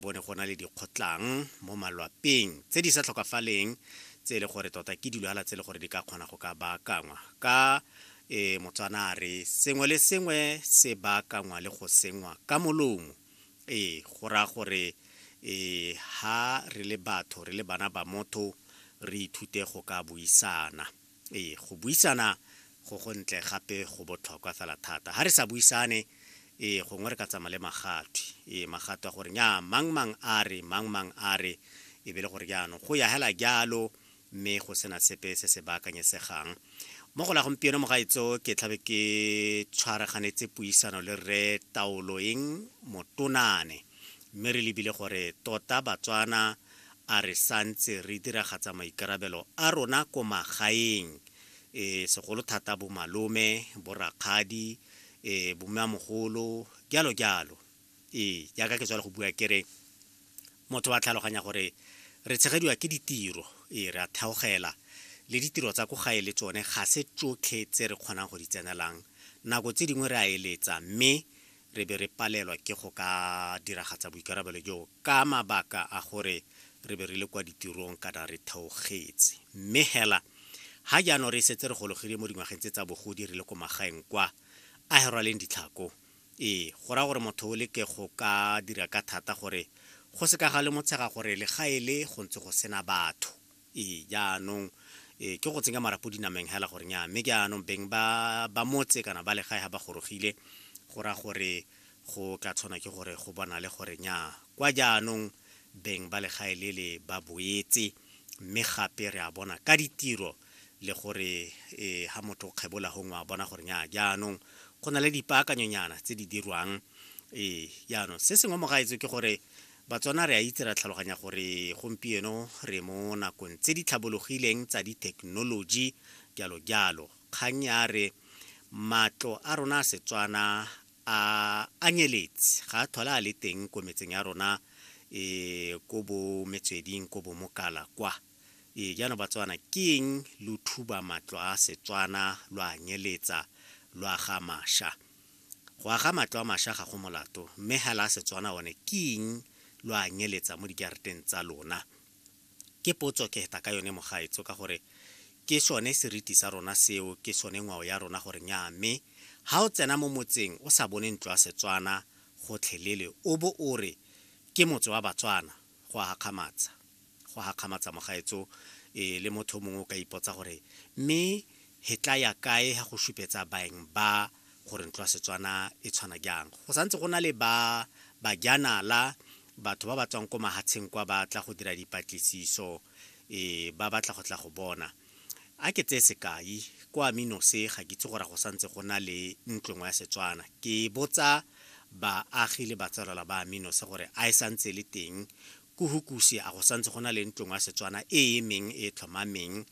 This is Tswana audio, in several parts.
bo ne go na le dikgotlang mo malwapeng tse di sa tlhokafaleng tse e le gore tota ke dilwala tse e le gore di ka kgona go ka baakangwa ka e motswana a re sengwe le sengwe se baakangwa le go sengwa ka molomo ee go raya gore e ha re le batho re le bana ba motho re ithute go ka buisana Ee, go buisana go go ntle gape go botlhokwa fela thata. Ga re sa buisane, ee, gongwe re ka tsamaya le magatwe. Ee, magatwe a gore nya mang mang a re, mang mang a re, e be le gore jaanong go ya hela jalo mme go sena sepe se se baakanyesegang. Mo go la gompieno mogaetso ke tlhabe ke tshwaraganetse puisano le rre Taoloeng Motonane mme re lebile gore tota Batswana a re sa ntse re diragatsa maikarabelo a rona ko magaeng e segolo thata bomalome borakgadi e bommeamogolo jalo jalo ee jaaka ke tswale go bua ke re motho wa tlhaloganya gore re tshegediwa ke ditiro ee re a theogela le ditiro tsa ko gae le tsone ga se tsotlhe tse re kgonang go di tsenelang nako tse dingwe re a eletsa mme re be re palelwa ke go ka diragatsa boikarabelo joo ka mabaka a gore re be re le kwa ditirong kana re theogetse. Mme hela, ha jaanong re setse re gologile mo dingwageng tse tsa bogodi re le ko magaeng kwa, a he rwaleng ditlhako. Ee, go raya gore motho o leke go ka dira ka thata gore go se ka ga lemotshega gore legae le go ntse go sena batho. Ee, jaanong e, ke go tsenya marapo dinameng hela gore nya mme ke anong beng ba ba motse kana ba legae ga ba gorogile go ra gore go tla tshwana ke gore go bona le gore nya kwa jaanong beng ba legae le le ba boetse mme gape re a bona ka ditiro le gore e, ha motho o kgebola gongwe a bona gore nya jaanong go na le dipaakanyonyana tse di dirwang ee jaanong se sengwe mo gaetso ke gore Batswana re a itse ra tlhaloganya gore gompieno re mo nakong tse di tlhabologileng tsa dithekenoloji jalo jalo. Kgang ya re matlo a rona a Setswana a anyeletse ga a tlhola a le teng ko metseng ya rona e ko bo metsweding ko bo mokala kwa e jaanong Batswana ke eng lo thuba matlo a Setswana lo a nyeletsa lo aga masha Go aga matlo a masha ga go molato, mme hela a Setswana one ke ing lo a nyeletsa mo dijareteng tsa lona? Ke potso ke heta ka yone mogaetso ka gore ke sone seriti sa rona seo ke sone ngwao ya rona gore nyaa mme ha o tsena mo motseng o sa bone ntlo ya Setswana gotlhelele o bo o re ke motse wa Batswana, go a gakgamatsa go a gakgamatsa mogaetso e le motho mongwe o ka ipotsa gore mme he tla ya kae ha go supetsa baeng ba gore ntlo ya setswana e tshwana jang go santse go na le ba bajanala batho ba ba tswang ko mahatsheng kwa ba tla go dira dipatlisiso e ba batla go tla go bona A ke tseye sekai, kwa Minose ga ke itse gore go santse go na le ntlo nngwe ya Setswana. Ke botsa baagi le batsalwala ba Minose gore a e santse e le teng ko Hukusi, a go santse go na le ntlo nngwe ya Setswana e e emeng e e tlhomameng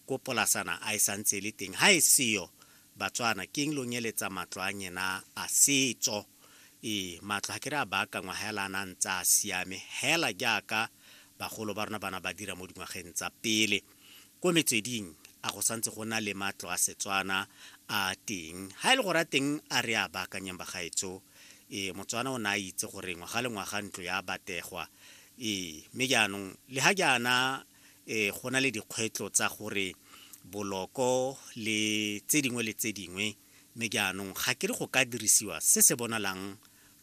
ko Polasana, a e santse e le teng. Ha e seyo, Batswana, ke eng lo nyeletsa matlo a nyena a setso? Ee, matlo ga ke re a baakangwa hela a na a ntse a siame, hela jaaka bagolo ba rona ba na ba dira mo dingwageng tsa pele. Ko metsweding a go santse go na le matlo a Setswana a teng. Ha e le gore a teng a re a baakanyeng bagaetso, ee Motswana o ne a itse gore ngwaga le ngwaga ntlo ya bategwa. Ee, mme jaanong le ha jaana um go na le dikgwetlho tsa gore boloko le tse dingwe le tse dingwe, mme jaanong ga ke re go ka dirisiwa se se bonalang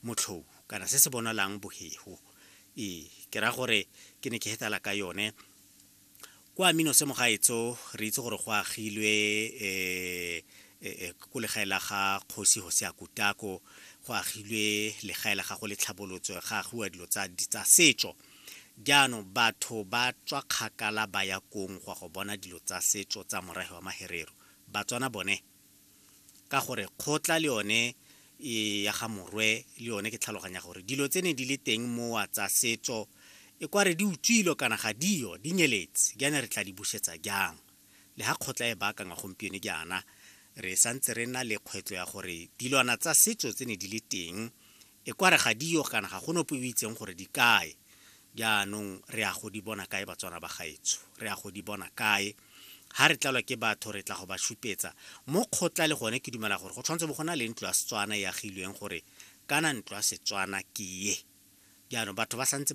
motlhou kana se se bonalang bohego. Ee, ke raya gore ke ne ke hetala ka yone. kwa mino se mogaetso re itse gore go agilwe um ko legae la ga kgosi go se ya kutako go agilwe legae la gago le tlhabolotso ga agiwa dilo tsa setso jaanong batho ba tswa kgakala ba ya kong go ya go bona dilo tsa setso tsa morahe wa maherero batswana bone ka gore kgotla le yone e ya ga morwe le yone ke tlhaloganya gore dilo tse ne di le teng mowa tsa setso e kware di utswilo kana ga dio di nyeletse jaana re tla di busetsa jang le ga kgotla e baakangwa gompieno jaana re santse re na le kgwetlo ya gore dilwana tsa setso tse ne di le teng E kware ga di yo kana ga go nope o itseng gore di kae. Jaanong re ya go di bona kae Batswana ba gaetsho? Re ya go di bona kae? Ha re tlalwa ke batho re tla go ba šupetsa mo kgotla le gone ke dumela gore go tshwanetse bo go na le ntlo ya Setswana e agilweng gore kana ntlo ya Setswana ke ye. Jaanong batho ba santse ba